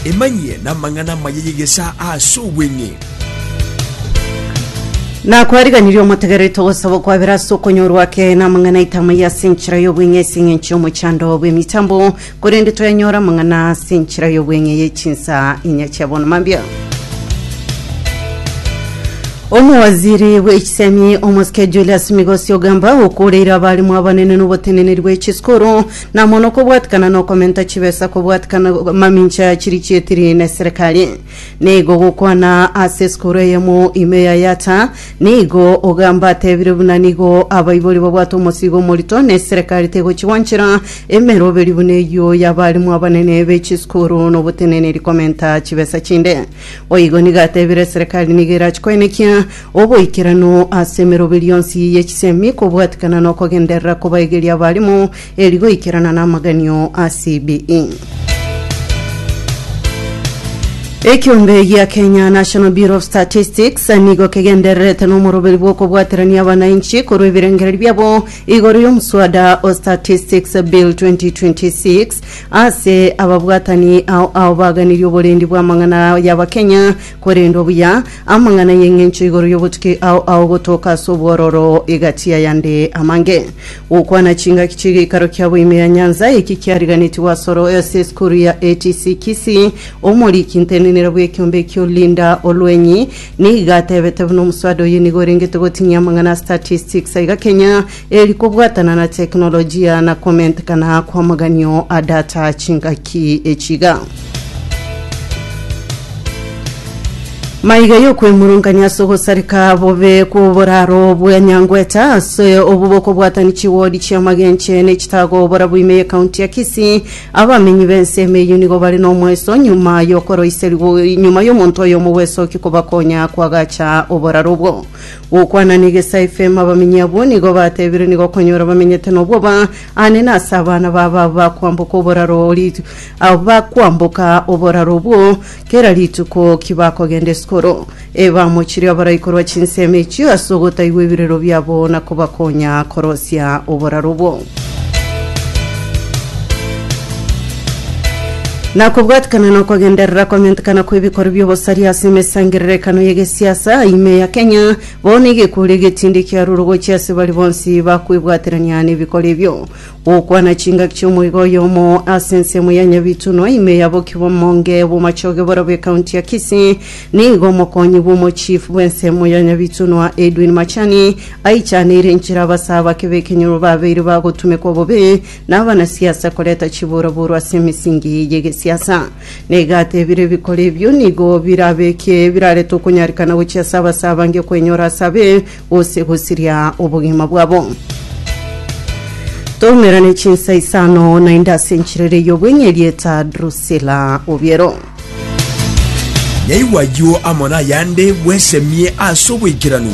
Emanyie namang'ana amaya y'egesaa ase obweng'e. Na kwariganirie omotegereri togosaba okwabera ase okonyorwa ake na amang'ana aito amaya ase enchera y'obweng'e ase eng'encho y'omochando bw'emitambo, korende toyanyore amang'ana ase enchera y'obweng'e ye chinsa inya chia bono. Mambia. Omowaziri bw'echisemi omosike Julius Migosi Ogamba okooreire abalimu abanene n'oboteneneri bw'echisukuru Na mono kobwatikana nokomenta chibesa kobwatikana mamincha chiri chietiri ne serikali. Nigo gokwana ase esukuru eyemo ime ya Yatta, nigo ogamba atebire buna nigo abaibori babwate omosigo omorito ne serikali tegochigwanchera emeroberi buna eyio y'abalimu abanene be chisukuru noboteneneri komenta chibesa chinde. Boigo nigo atebire serikali nigo erache koenekia oboikeranu ase emeroberio yonsi ye chisemi kobwatikana na okogenderera kobaegeria abarimu eri goikerana na amaganio a CBE. Ekiombe gia Kenya National Bureau of Statistics nigo kegendererete nomoroberi bw'okobwaterania abanainchi korwa ebirengererio biabo igoro y'omoswada o Statistics Bill 2026 Ase ababwatani ao ao baganirie oborendi bw'amang'ana y'Abakenya korendwa buya, amang'ana y'eng'encho igoro y'obotuki ao ao gotoka ase obwororo egati y'ayande amange. Gokwana chingaki chi'egeikaro kiabo ime ya nyansa, eki kiariganetigwe asoro ase esukuru ya ATC Kisii. Omoriki ntenenera bw'ekiombe ekio Linda Olwenyi nigo atebete buna omoswada oye nigo orengete gotinyia amang'ana a statistics aiga Kenya Eri kobwatana na teknolojia na komentekana kw'amaganio a data chingaki echiga. Maiga y'okwemurungania ase ogosareka bobe kw'oboraro bwa Nyangweta ase obo bokobwatani chiwodi chi'amagenche ne chitago bora bw'ime y'ekaunti ya Kisii. Abamenyi b'ense ime eyio nigo bare n'omoeso nyuma y'okoroiserigwa nyuma y'omonto oyomo gwesookia kobakonya kwagacha oboraro obwo. Gokwana negesae efemo abamenyi abwo nigo batebire nigo okonyora bamenyete nobwoba aane nase abana babo abo bakwamboka oboraro o rit- abo bakwamboka oboraro obwo kera rituko ki bakogenda esukuru. Ebamochirie abarai korwa chinsemo echio ase ogotaigwa ebirero biabo na kobakonya korosia oboraro obwo. Na kobwatikana na okogenderera kwamentekana kw'ebikorwa bi'obosaria ase emesangererekano y'egesiasa ime ya Kenya, bono egekuuru egetindi kiarure gochia ase baria bonsi bakwebwaterania nebikoro ebio. Gokwana chingaki chi'omoiga oyomo ase ensemo ya Nyabitunwa ime ya Bokibomonge Bomachoge borobwo ekaunti ya Kisii, nigo omokonyi bw'omochief bw'ensemo ya Nyabitunwa Edwin Machani Aichaneire enchera abasaa bake b'ekenyoro babeire bagotumekwa bobe nabanasiasa koreta chiboraborwa ase emesingi y'egesiasa. Na iga atebire ebikora ebio nigo birabekie birarete okonyarikana gochia ase abasaa bange kwenyora ase abe gose gosiria obogima bwabo. Toumerane chinsa isano naende ase enchera ere y'obweng'e erieta Drusila Obiero. Nyaigwa ayio amo nayande bwesemie ase oboikeranu.